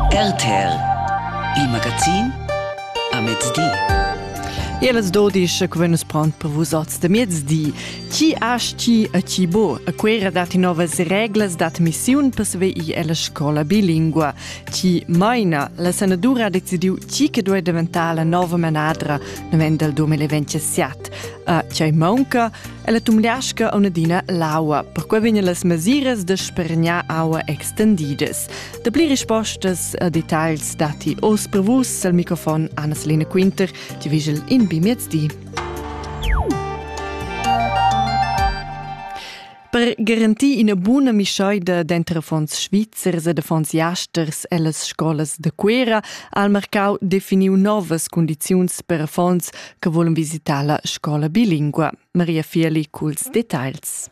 RTL Il magazin a mezdi. El as dodisch che venus pront per vusats de mezdi. Chi aschi e chi bo, a quera datti novas reglas dat missiun per sveir ella scola bilingua. Chi maina, la senadura ha decidiu chi che duei diventare la nova manadra nel 2027. A chi manca, Ella tumliasca aunadina l'aua, perquai vegnan las mesiras da spergnar aua extendidas. Da pli rispostas a detagls datti oz per vus al microfon Anna-Selina Quinter, ti vigel in bi miezdi. Per garantir ina buna mischaida denter fonds svizzers e de fonds jasters ellas scolas de Cuera ha il marcau definiu novas condiziuns per fonds che vulan visitar la scola bilingua. Maria Fieli culs detagls.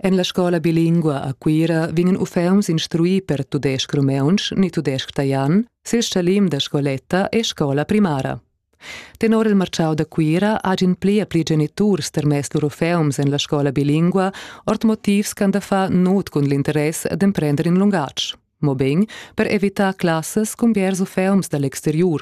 En la scola bilingua a Cuira vegnan uffants instruì per tudesc rumeuntsch ni tudesc taian sil scalim da scoletta e scola primara. Tenor il marciau da Cuira hagin pli a pli geniturs termess lur uffants en la scola bilingua ord motivs ch'han da far nut cun l'interess d'emprender in lungatg, mobein per evitar classas cun biers uffants dall'exteriur.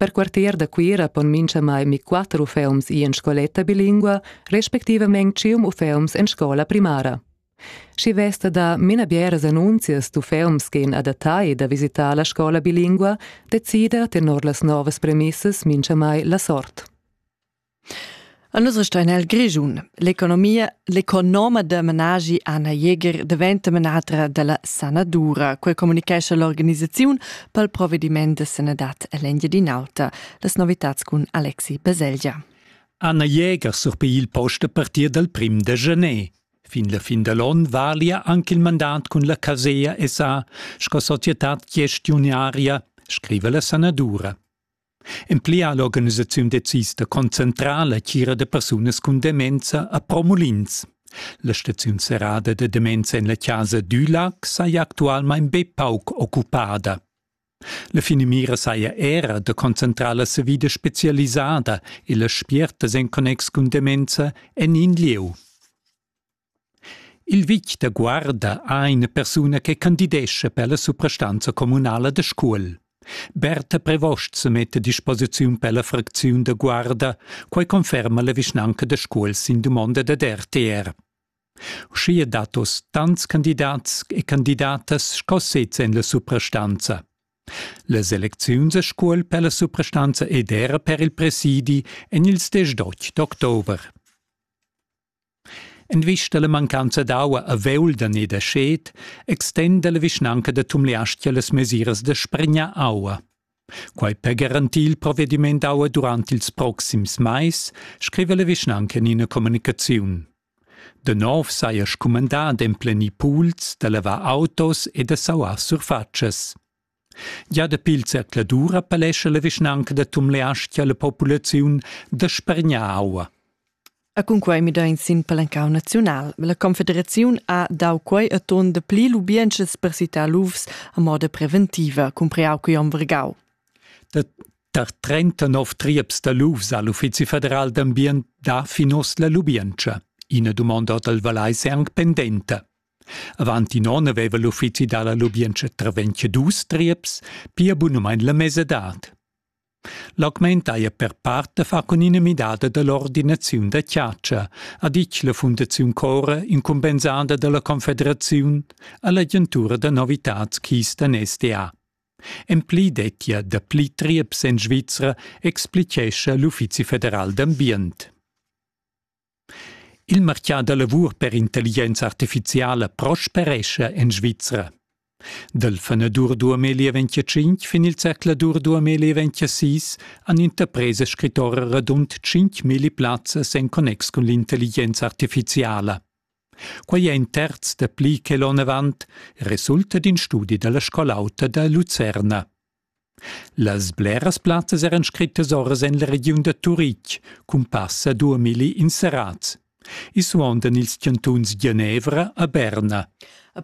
Per quartier da Cuira pon minchamai mi quatter uffeums ir en scoletta bilingua, respectivament tschient uffeums en scola primara. Schi vesta da mina bieras annunzias d'uffeums che in adattai da visitare la scola bilingua decida tenor las novas premissas minchamai la sort. A nus resta in el Grischun. L'economia, l'economa da menaschi Anna Jäger daventa menatra dalla sanadura. Quei communicescha l'organisaziun pel provvediment da sanadad ell'Engiadin'Alta. Las novitads cun Alexi Baselgia. Anna Jäger surpei il post a partir dal prim da gener. Fin la fin da l'on valia anche il mandat cun la Casea SA sco societad gestiunaria, scriva la sanadura. En pli ha l'organisaziun decis da concentrar la tgira da persunas cun demenza a Promulins. La staziun serrada da demenza en la casa Dülac saja actualmain be pauc occupada. La finamira saja era da concentrar la savida spezialisada e las spiertas en connex cun demenza en in lieu. Il vitg da Guarda ha ina persuna che candidescha per la suprastanza communala da Scuol. Berta Prevost semetta a disposiziun per la fracziun da Guarda, quai conferma la vischnanca da Scuol sin dumonda dad RTR. Uschia dat oz tants candidats e candidatas sco sez en la suprastanza. Las elecziuns a Scuol per la suprastanza ed era per il presidi en ils 10 d'october. En vista alla mancanza d'aua a Veulden e da Schet extenda la vischnanca da Tumleastga las mesiras da spregnar aua. Quai per garantir il provvediment d'aua durant ils proxims mais, scrive la vischnanca in ina communicaziun. De nov saja scumandà d'emplenir pools, da lavar autos e da sauar surfatschas. Gia dapi il zercladura palescha la vischnanca da Tumleastga la populaziun da spargnar aua. E cunquei midein sin palencau naziunal. La confederaziun ha dau quei atun de pli lubientschas per citar lufs a moda preventiva, cumpreau quei om Vergau. Da tar 39 trieps da lufs al Uffizi federal d'ambient da finos la lubientscha. Ina dumonda dal Valais è anche pendenta. Avant in onn aveva l'uffizi da la lubientscha Travenche dus trieps, pia bunamain la mesadad. L'augment haja per part da far cun ina midada da l'ordinaziun da chatscha, ha ditg la Fundaziun Cora incumbensada da la Confederaziun a l'agentura da novitads Keystone SDA. En pli dettia dapli trieps en Svizra, explitgescha l'Uffizi federal d'ambient. Il martgà da lavur per intelligenza artifiziala prosperescha en Svizra. Dal fanedur 2025 fin il zercladur 2026 han interpresas scrittora radund 5.000 plazzas en connex cun l'intelligenza artifiziala. Quai è in terz da pli che l'onn avant, resulta d'in studi da la scol'auta da Lucerna. Las bleras plazzas eran scrittas ora en la regiun da Turitg cun passa duamilli inserats. I suondan ils chantuns Genevra a Berna.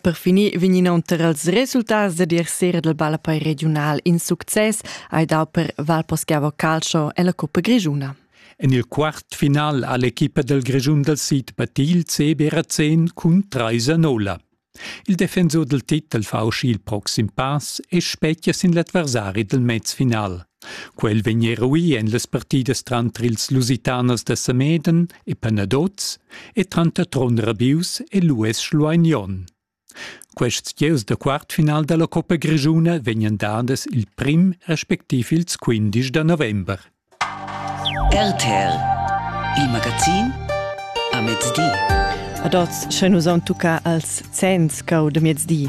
Per finir vegn inoltre als resultats da dir sera del ballapei regiunal in success hai dau per Valposchiavo Calcio e la Coppa Grigiuna. En il quart final ha l'equipa del Grischun dal sid battil CB Razén cun 3 a 0. Il defensur dal titel fa uschì il proxim pass e spetgia sin l'adversari dal mez final. Quel vegn eruì en las partidas tranter ils Lusitanos da Sameden e Panaduz e tranter Tron Rabius e l'US Schlueignon. Quests gieus da quartfinal da la Coppa Grischuna vegnan dadas il prim respectiv ils quindisch da november. RTL Il magazin a mezdi. Ad oz, sche nus on tucca als zenns cau de mezdi.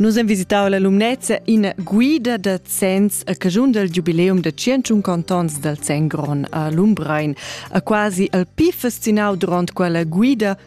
Nus hem visitau la Lumnezia in guida da zenns a cagiun del giubileum de 150 ans dal Zengron a Lumbrein. A quasi al pi fascinau durant quella guida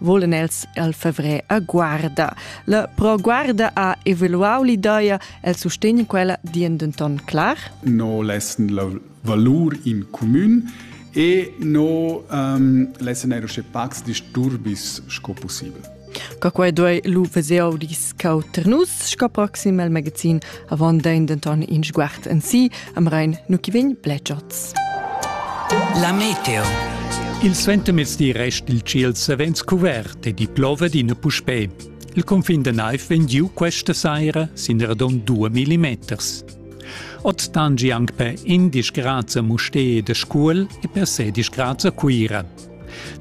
volan els al fevré a guarda. La pro guarda ha evaluau l'ideia el sustegn quella dien denton clar? No lessen la valur in commun e no um, lessen eiro sche pacs disturbis sco possibel. Ca quai doi lu veseo dis Cau ter nus sco proxim el magazin avon dein denton in sguard en si am rein nu chi vegn bletschats. La meteo. Il suentemezdi rest il ciel savens cuvert e di plova d'ina puspè. Il confin da naiv vegn giu questa saira sin radon 2 millimeters. Ot tangi anche per 11 grad a Mustee de Scuol e per 16 grad a Cuira.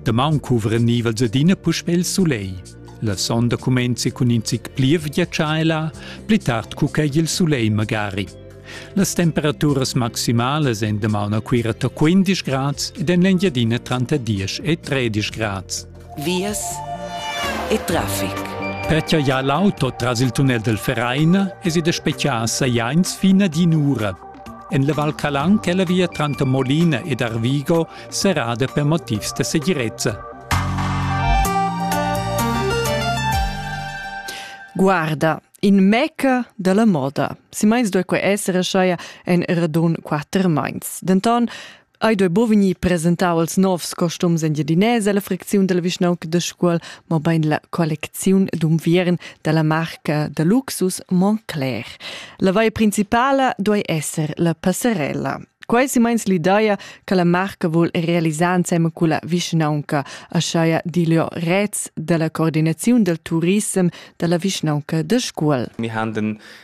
Damaun cuvra nivels adina puspè il soleil. La sonda cumenzi cun in zic plievgia tscheila, pli tard cu quei il sulei magari. Las temperaturas maximalas en damaun a Cuira to 15 grads ed en l'Engiadina tranter 10 e 13 grads. Vias e traffic. Pertja ja l'auto tras il tunnel del Vereine es id a speciasa jains fin ad in ura. En la Val Calan che la via tranter Molina ed Arvigo serrada per motivs da segirezza. Guarda, in meca dalla moda. Si meins doi quei essere scheia en radun quatter meins. Denton Ei doi bo vegnir presentau als novs costums en Jedinese la fricziun dalla vischnaunca da Scuol, mo bein la collecziun d'unviern dalla marca da luxus Montclair. La vaia principala doi esser la passerella. Quai si meins l'ideia che la marca vuol realisar insemme culla vischnaunca, aschaia di Leo Rez dalla coordinaziun del turissem dalla vischnaunca da Scuol. Wir haben den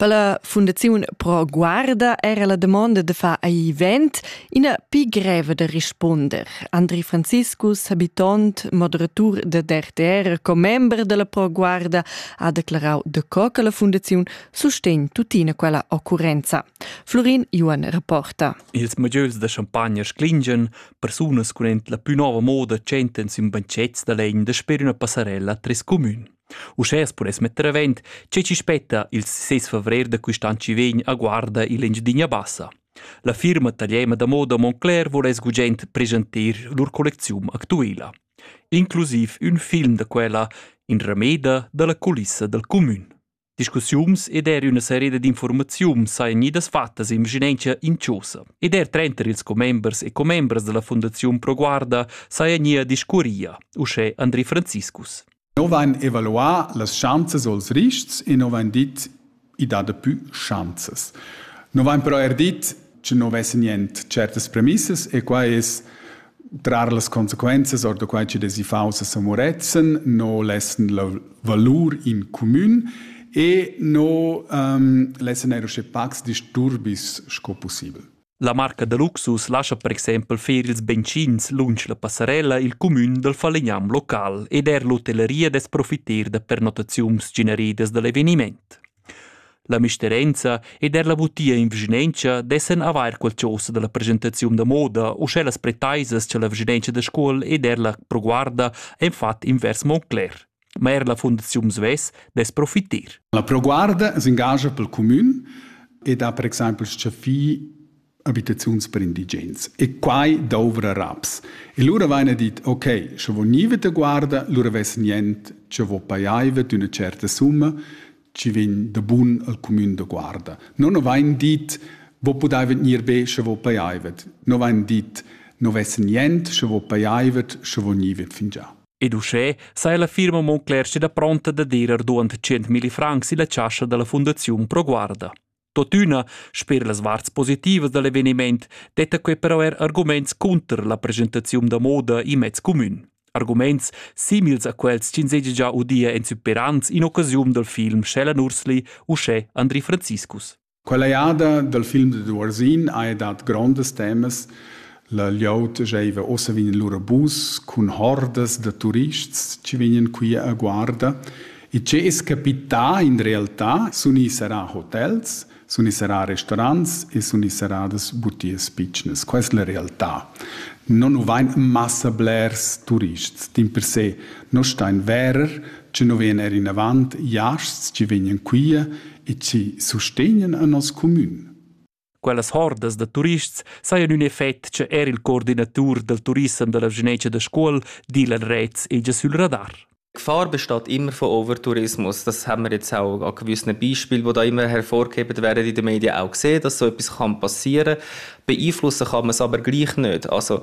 Per la Fundaziun Pro Guarda era la damonda da far event ina pi greva da risponder. Andri Franziscus, habitant, moderatur da DRTR, commember della Pro Guarda, ha declarau daco che la Fundaziun sustegn tuttina quella occurrenza. Florin Johan rapporta. Ils mugieus da champagna sclingen, persunas cun la più nova moda tschentan sin bancets da legn da sper una passarella a tres comün. Uschè as pudess metter avent che chi spetta il 6 favrer da quist an chi vegn a guarda il Engiadina Bassa. La firma tagliema da moda Moncler voless gugent presentir lur collecziun actuela. Inclusiv ün film da quella in rameda dalla culissa dal comün. Discussiums ed er üna sereda d'informaziun sajan gnidas fattas in vicinanza inciosa. Ed er trenter ils commembers e commembras della Fondaziun Pro Guarda sajan gnir discurria, uschè Andri Franziskus. No vain evaluà las schanzas o'ls rists e no vain dit i dà dapü schanzas. No vain però eir dit cha no vess niente tschertas premissas e quai es trar las consequenzas or da quai chi'd es iffaunts a San Murezzan, no lessan la valur in cumün e no lessan eir uschè pacs disturbis sco pussibel. La marca da luxus lascha per exempel fer ils benzins lunsch la passarella il cumün dal falegnam local ed er l'hotelleria dess profiter da pernottaziuns generidas da l'eveniment. La misterenza ed er la butia in vischinenza dessen avair qualchosa da la presentaziun da moda u sche las pretaisas cha la vischinenza da Scuol ed er la proguarda han fat invers Montclair. ma er la fundaziun svess dess profiter. La Pro Guarda s'engascha pel cumün ed ha per exaimpel stgaffì abitaziuns per indigens. E quai douvra raps. E lura vaina dit, ok, sche vo niva da guarda, lura vess nient, che vo paiaiva d'üna certa summa, ci vegn da bun al cumün da guarda. Non ho vain dit, vo pudaiva gnir be sche vo paiaivat. No vain dit, no vess nient, sche vo paiaivat, sche vo nivat fingià. Ed uschè saja la firma Monclerster pronta dad ir duant 100.000 francs illa chascha da la Fundaziun Pro Guarda. Totüna, sper las varts positivas da l'eveniment, detta quai però er arguments cunter la presentaziun da moda in mez cumün. Arguments simils a quels ch'ins seja già udia en superants in occasiun dal film Shell Nursli uschè Andri Franziskus. Quella jada dal film dad Uorsin haja dat grondas temas. La glieud giaiva ossa vegn in lura bus cun hordas da turists chi vegnan qui a guarda. E che es capità in realtà sun i sarà hotels, sun i sarà restaurants e sun i sarà das butias pitschnas. Quai es la realtà. Non nu vain massa blers turists. Dimpersè Nus stein verer, che nu vegn er inavant jasts chi vegnan quia e chi sustegnan a nos cumün. Quellas hordas da turists sajan ün effect che er il coordinatur dal turissem da la Genetsch da Scuol, Dylan Retz, è già sul radar. Gefahr besteht immer von Overtourismus, das haben wir jetzt auch an gewissen Beispielen, die da immer hervorgehoben werden in den Medien auch gesehen, dass so etwas kann passieren kann. Beeinflussen kann man es aber gleich nicht. Also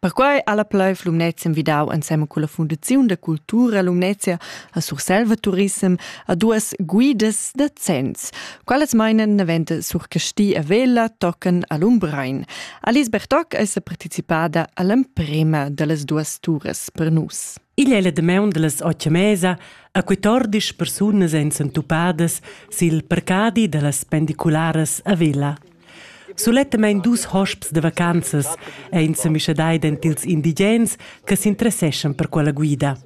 Perquai ha la Plaiv Lumnezia envidau ensemen culla Fundaziun da cultura Lumnezia a Surselva Turissem a duas guidas da zenns. Quelles meinen daventa sur Casti e Vella tocan a Lumbrein. Alice Bertoc è partecipada all'emprema dallas duas turas per nus. Igl è la damaun dallas otg mesa a 14 persunas èn sentupadas sil parcadi dallas pendicularas a Vella. Sulettamain dus hosps da vacanzas ein semischadai dentils indigens che s'interesseschan per quella guida.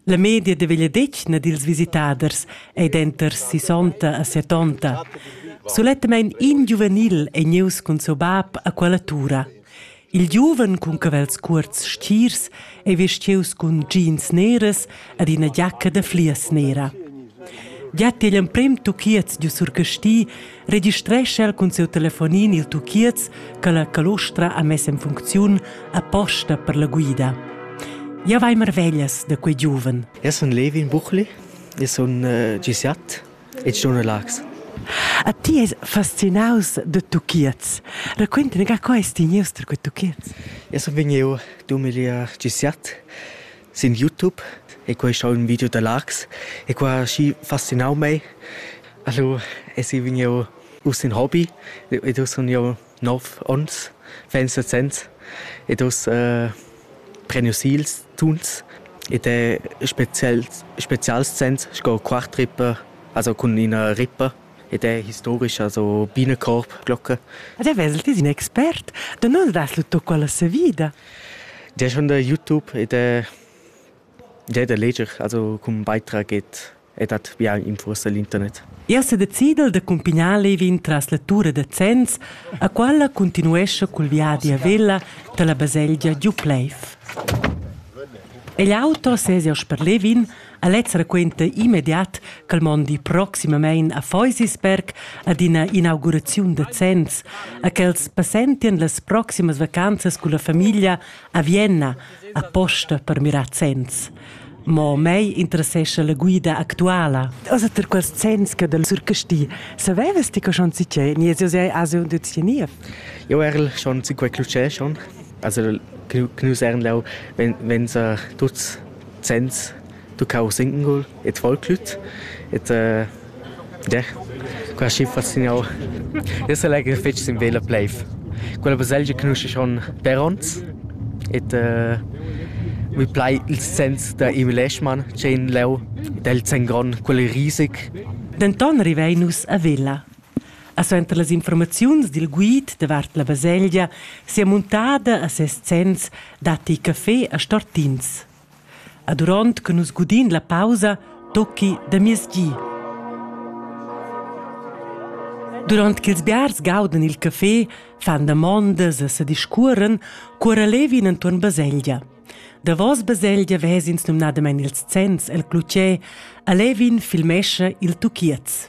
La media de vegliadetgna dils visitaders ei denter sisonta e setonta. Sulettamain in giuvenil ei gnius cun siu bab a quella tura. Il giuven cun cavels cuorts stirs ei vestius cun jeans neras ed ina giacca da flias nera. Giat igl emprem tuchiez giu sur Casti registrescha el cun siu telefonin il tuchiez che la calostra ha mess en funcziun aposta per la guida. Ja vai marveglias da quei giuven. Eu sun Levin Buchli, eu sun uh, eh, gisiat It's schon relax. A ti es fascinaus da tuchiets. Raquintami ga, co es ti gnius tar quei tuchiets? Eu sun vegniu dumilia dschisiat sin YouTube e quai schau ün video da Lachs e qua ha schi fascinau mei. Allo es i vegniu uss in Hobby ed uss sun jeu nov onns vegn sesents ed oz eh, prenius ils tuns ed è spezial, spezials sens sco quartrippe, also cun ina rippe ed è historica, so Bienenkorbglocke. Ad è vesel ti in expert? Da nus das lu tocco alla savida? Der schon der YouTube ed è, der da leger, also cum beitrag et ed hat biain infursa l'internet. Ia s'è decidel da cumpignar Levin tras la tura da Zens, a qualla cuntinuescha cul viadi a Vella dalla baselgia Giupleiv. Egl auto sez jau per Levin, a lez raquenta immediat ch'el mondi proximamein a Feusisberg ad ina inauguraziun da Zens, a ch'els passentien las proximas vacanzas culla famiglia a Vienna aposta per mirar Zens. Mo mei interessescha la guida actuala. Also per quels sens che del surcasti. Savevas ti che schon si che ni es sei asio de tienir? Jo erl schon si quei clucè schon. Also knus ern lau wenn wenn sa tuts sens du kau sinken gol et voll klut et äh, Der, qua schi fa signor. Ins sa legher fetg sin vela pleiv. Quella baselgia canusce schon per ons et uh, mi plai il sens da Emil Leschmann c'è in leu del Zengron quel risig. Denton rivein nus a Vella. A suenter las informaziuns dil guid davart la baselgia sia muntada a ses zenns datti caffé a Stortins. E duront che nus gudin la pausa, tocchi da mies gi. Durant ch'ils biars gaudan il café, fan damondas e se discuoren, cuora levin entuorn baselgia. Davos baselgia vesins numnadamein ils zenns el clutger e levin filmescha il tuchiez.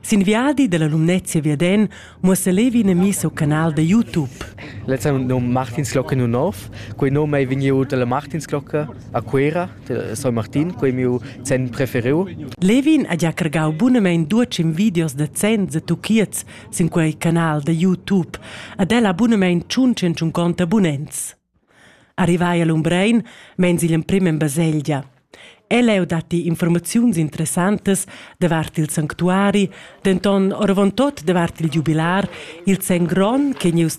Sin viadi dalla Lumnezia viaden muossa Levi ina missa o canal da YouTube. Lezza num Martinsglocke nu nov. Quei num ei vegniu dalla Martinsglocke a Cuera, de San Martin, quei miu zen preferiu. Levin ha già cargau bunamein duecim videos da zens e tuchiets sin quei canal da YouTube. Ad ella bunamein tschun cent abonnents. Arrivai a Lumbrein meins igl emprem en baselgia. Ell'eu datti informaziuns interessantas davart il sanctuari, denton oravontut davart il giubilar, il sen gron che gnieus